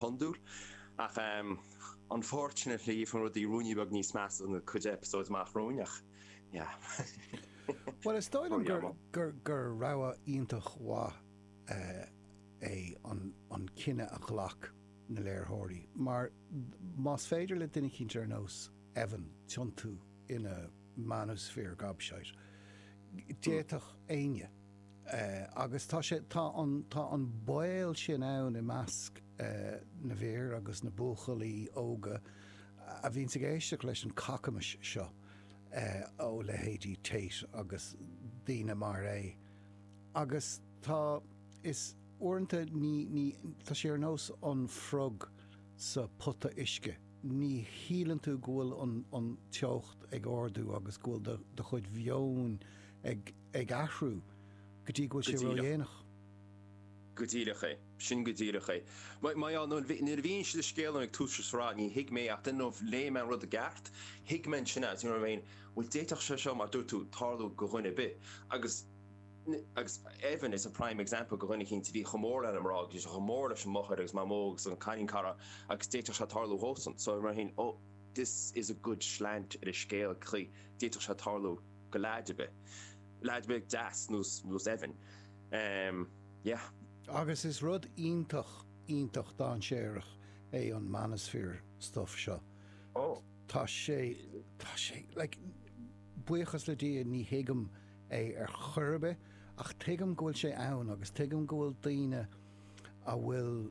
hiondúil. Ach an pháirt sin a shliabh chun rudaí ruainnín beag níos measa sa gcuid eipeasóid amach romhainn, ach yeah. Bhuel, is dóigh liom gur rogha iontach mhaith é an cinneadh a ghlac na léirtheoirí, mar más féidir le duine eicínt ar nós Evan tiontú ina manosphere gobshite, d'fhéadfadh éinne. Agus tá sé, tá an, tá an baol sin ann i measc na bhfear agus na buachaillí óga a bhíonns ag éisteacht leis an cacamais seo ó leithéidí Tate agus daoine mar é. Agus tá, is uaireanta ní, ní, tá sé ar nós an frog sa phota uisce, ní shíleann tú go bhfuil an, an teocht ag ardú agus go bhfuil do, do chuid mheoin ag. ag athrú, go dtí go bhfuil sé ródhéanach. Go díreach. Go díreach é. Sin go díreach é. Má, á, nuair a mhínigh siad an scéal dom ag tús an sraith, ní thuig mé ach, dunno if léigh mé an rud i gceart, thuig mé ansin as, you know what I mean, bhuel d'fhéadfadh sé seo, mar a dúirt tú, tarlú go dhuine ar bith. Agus, agus Evan is a prime example go dhuine eicínt a bhí chomh mór lena mná, go bhfuil sé chomh mór leis an máthair agus mamó agus an cailín cara agus d'fhéadfadh sé tarlú dhósan. So, mar sin, oh, this is a good slant ar an scéal, d'fhéadfadh sé tarlú. go leaid ar bith. leaid ar bith deas nó nó Evan em yeah. Agus is rud iontach iontach dainséarach é an manosphere stuff seo. Oh. Tá sé tá sé like buíochas le Dia ní thuigim é ar chor ar bith ach tuigim go bhfuil sé ann agus tuigim go bhfuil daoine a bhfuil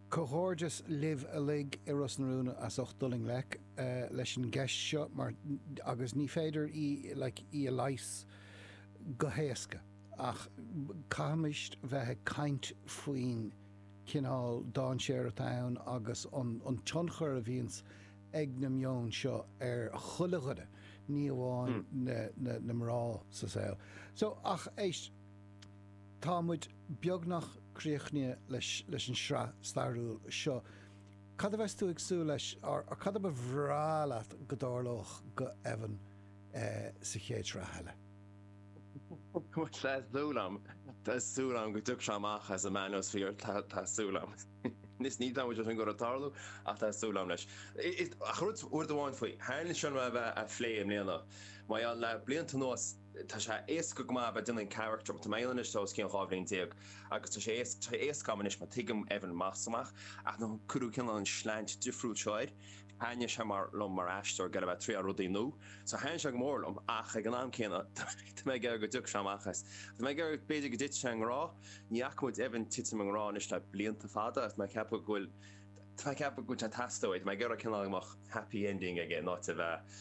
Comhghairdeas libh uilig i Ros na Rún as ucht dul i ngleic leis an gceist seo mar, agus ní féidir í like í a leigheas go héasca ach caithfimid bheith ag caint faoin chineál dainséir atá ann agus an an tionchar a bhíonns ag na meoin seo ar chuile dhuine, ní amháin na na na mná sa saol. So, ach éist. Tá muid beagnach críochnaithe leis an sraith stairiúil seo. Cad a bheas tú ag súil leis, or cad a ba bhreá leat go dtarlódh go Evan sa chéad sraith eile? Tá súil agam, tá súil agam go dtiocfaidh sé amach as an manosphere, tá súil agam. Níl mé cinnte an bhfuil sé ag goil a tarlú ach tá súil agam leis. Ach rud amháin faoi, thaitin sé liom é a bheith á phlé i mbliana, mar gheall le blianta anuas, Tá sé éasca go maith a bheith ag déanamh an carachtar dom. Tá mé ann anois le os cionn dhá bhliain déag agus tá sé tá sé éasca agam anois mar tuigim Evan amach is amach ach nuair a cuireadh cineál an slant difriúil seo air. Thaitnigh sé go mór liom mar aisteoir gheall a bheith ag triail rudaí nua so thaitnigh sé go mór liom ach ag an am céanna tá mé ag iarraidh go dtiocfaidh sé amach as. Tá mé ag iarraidh b'fhéidir go dtitfidh sé i ngrá. Ní fhaca muid Evan ag titim i ngrá anois le blianta fada ach tá mé ag ceapadh go bhfuil tá mé ag ceapadh go bhfuil sé ag teastáil uaidh. Tá mé ag iarraidh cineál go mbeadh happy ending aige in áit a bheith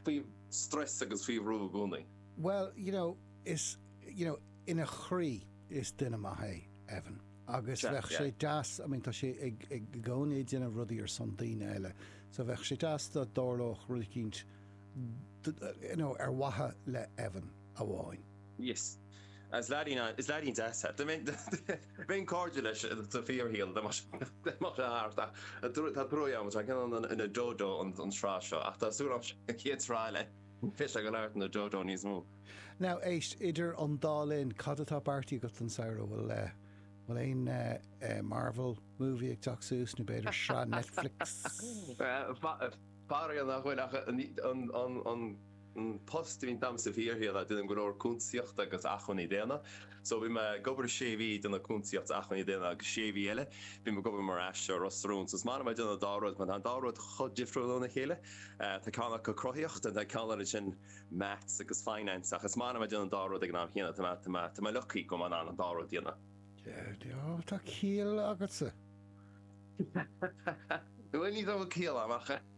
faoi strus agus faoi bhrú i gcónaí. Bhuel, you know, is, you know, ina chroí, is duine maith é Evan. Agus bheadh sé yeah. deas, I mean, tá sé ag, ag i gcónaí ag déanamh rudaí ar son daoine eile. So bheadh sé deas dá dtarlódh rud éicint, d- d- you know, ar mhaithe le Evan amháin. Yes. Is leaidín an, is leaidín deas é. Bheinn cairdiúil leis sa fíorshaol dá mbeadh sé thart, ach tá truaigh orm, tá cineál ina dodo an tsraith seo, ach tá súil agam sa chéad sraith eile go mbeidh sé go neart ina dodo níos mó. Now, éist, idir an dá linn, cad atá beartaithe agat don samhradh? Bhfuil, bhfuil aon Marvel movie ag teacht suas, nó b'fhéidir sraith Netflix? Faraor nach bhfuil, ach an, an, an, an. post a bhíonn agam sa bhfíorshaol tá mé ag déanamh go leor cuntasaíochta agus acmhainní daonna. So bhí mé ag obair sé mhí ag déanamh cuntasaíocht is acmhainní daonna agus sé mhí eile bhí mé ag obair mar aisteoir Ros na Rún. So is maith liom a déanamh an dá rud mar tá an dá rud chomh difriúil óna chéile. Tá ceann acu cruthaíocht and tá ceann eile sin maths agus finance ach is maith liom a déanamh an dá rud ag an am céanna. Tá mé tá mé lucky go mbeidh mé in ann an dá rud a dhéanamh. Oh tá ciall agatsa. Bhuel ní raibh ciall agam ach.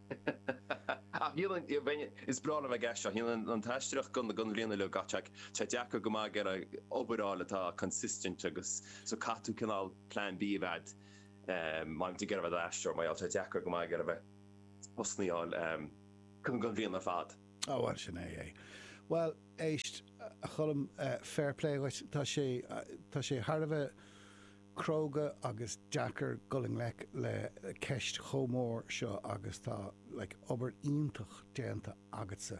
Ach níl an, bheinn, is breá liom a bheith ag déanamh an aisteoireacht don don bhliain uilig ach tá, tá deacair go maith ag iarraidh obair a fháil atá consistent agus so caithfidh tú cineál plan B a bheith agat ehm má bhíonn tú ag iarraidh a bheith i d'aisteoir mar gheall tá deacair go maith ag iarraidh a bheith postannaí a fháil ehm don don bhliain ar fad. Á bhuel sin é é. Bhuel éist a Cholm eh fair play dhuit tá sé tá sé thar a bheith, cróga agus deacair dul i ngleic le ceist chomh mór seo agus tá like obair iontach déanta agatsa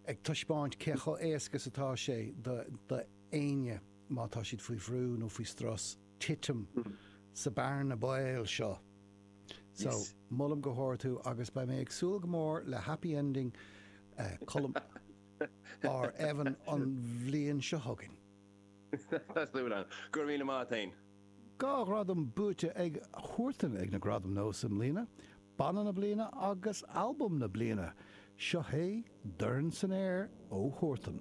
ag taispeáint cé chomh éasca is atá sé do do éinne má tá siad faoi bhrú nó faoi strus titim sa bearna baoil seo so Yes. molaim go hard thú agus beidh mé ag súil go mór le happy ending eh, Colm ar Evan an bhliain seo chugainn. Tá súil agam. Go raibh míle maith a'd féin. Dhá ghradam buaite ag Huartan ag na Gradaim Nós i mbliana, Banna na Bliana agus Albam na Bliana. Seo hé Dorn San Aer ó Huartan.